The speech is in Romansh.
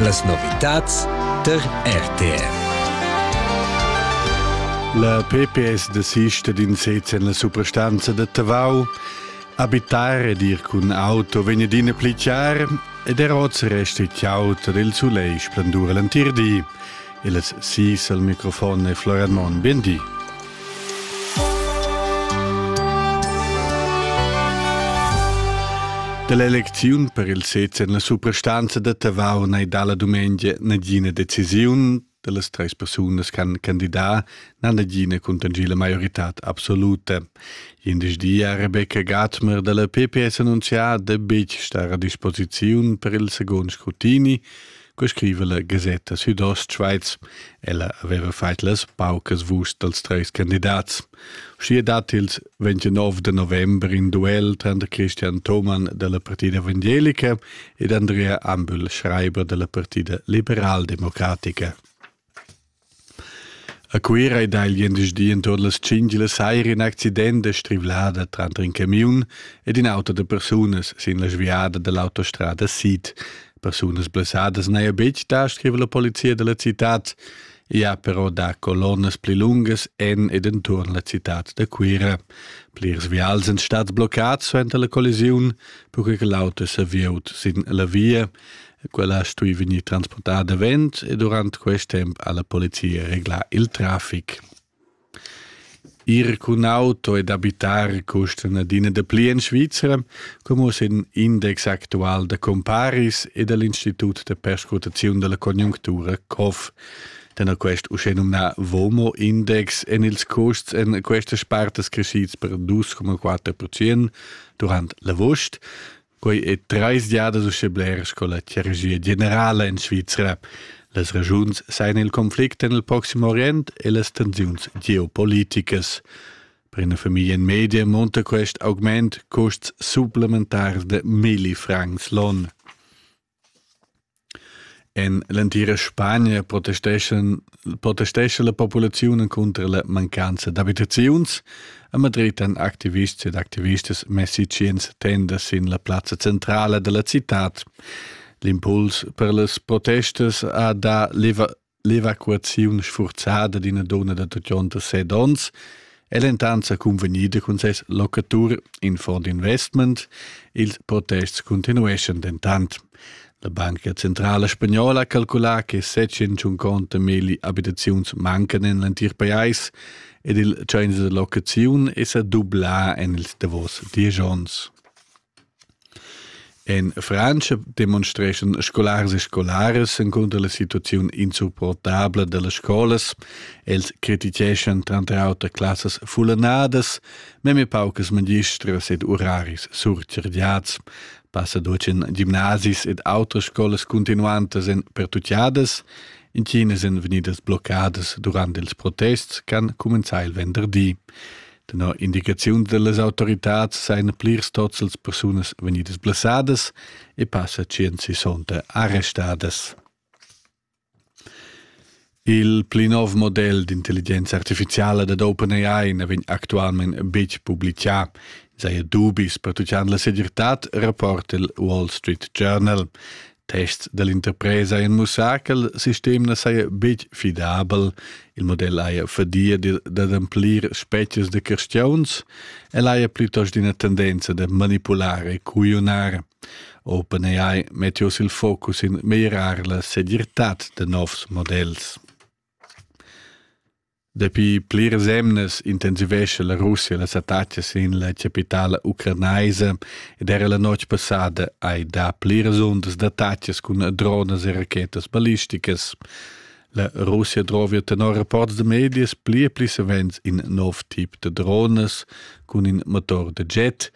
Las novitads tar RTR. La PPS desista d'in sez en la suprastanza da Tavau. Abitar ed ir cun auto vegn adina pli chiar ed er oz resta chauta del sulegl splendur l'entir di. Il es sis al microfon e Florian Mon, bindi. Dell'eleziun per il sez en la suprastanza da Tavau n'è dalla dumengia nagina decisiun dallas treis persunas can candidar na nagina contangì la maiorità absoluta. Indisch di ha Rebecca Gatmer dalla PPS annunzià da betg star a disposiziun per il second scrutini, co scriva la gasetta südostschweiz. Ella aveva fait las paucas vust dels treis candidats. Schier dat ils 29 de november in duel tranter Christian Thomann della Partida Evangelica ed Andrea Ambühl, schreiber della Partida Liberaldemocratica. A Cuira ei dagl gliendisdi entuorn las tschintg la saira in accident da strivlada tranter in camiun ed in auto da persunas sin la sviada dall'autostrada sid. Persunas blessadas n'haja betg dà, scriva la polizia da la citad. I ha però dà colonnas pli lungas en ed enturn la citad da Cuira. Plirs vials èn stads bloccads suenter la collisiun, perquai che l'auto è serviut sin la via. quella ha stui vegnir transportada davent e durant quest temp ha la polizia reglà il traffic. Ir cun auto ed abitar custan adina dapli en Svizzera, come oss in index actual da comparis e dell'Institut de Perscrutazione della Conjunctura COF. Den ha quest uschè nomnà VOMO Index en ils custs en questas partes crescids per 2,4% durant l'avost Quei ei treis giadas uschè bler sco la chirurgia generala en Svizra. Las ragiuns sein il conflict en il Proximo Orient e las tensiuns geopoliticas. Per una famiglia in media monta quest augment custs supplementars de milli francs l'on. En l'entira Spagna protestescha protestescha la populaziun encunter la mancanza d'abitaziuns. A Madrid han activists ed activistas messi tschient tendas sin la plazza centrala da la citad. L'impuls per las protestas ha dà L'evacuaziun sfurzada d'ina donna da tutgionta set onns è l'entanza cunvegnida cun ses locatur in fond investment. Ils protests continueschan dentant. La Banca Centrala Spagnola ha calculà che 750 milli abitaziuns mancan en l'entir pajais ed il tschains da locaziun è sa dublà en ils davos diesch onns. En Frantscha demonstreschan scolars e scolaras encunter la situaziun insupportabla dallas scolas. Els criticheschan tranter auter classas fullanadas, meme paucas magistras ed uraris surcirgiads. Passadoc en gimnasis ed autres scolas cuntinuantas èn pertutgadas. Intinas èn vegnidas bloccadas durant ils protests ch'han cumenzà il venderdi. Tenor indicaziun dallas autoritads sein plirs tozzels persunas vegnidas blessadas e passa tschient sessonta arrestadas. Il pli nov model d'intelligenza artificiala dad OpenAI ne vegn actualment betg publicà. Saja dubis pertuccant la segirtad, rapporta il Wall Street Journal. Tests dall'interpresa ein mussar ch'el sistem na saja betg fidabel. Il model haja fadia d'ademplir spetgas da cristiuns. El haja plitost ina tendenza da manipular e cuiunar. OpenAI mette oss il focus in meglierar la segirtad da novs models. Dapi pliras emnas intensivescha la Russia las attacas sin la capitala ucranaisa ed era la notg passada hai dà pliras undas d'attacas cun dronas e rachetas ballisticas. La Russia drova tenor rapports da medias pli e pli savens in nov tip da dronas cun in motor da jet,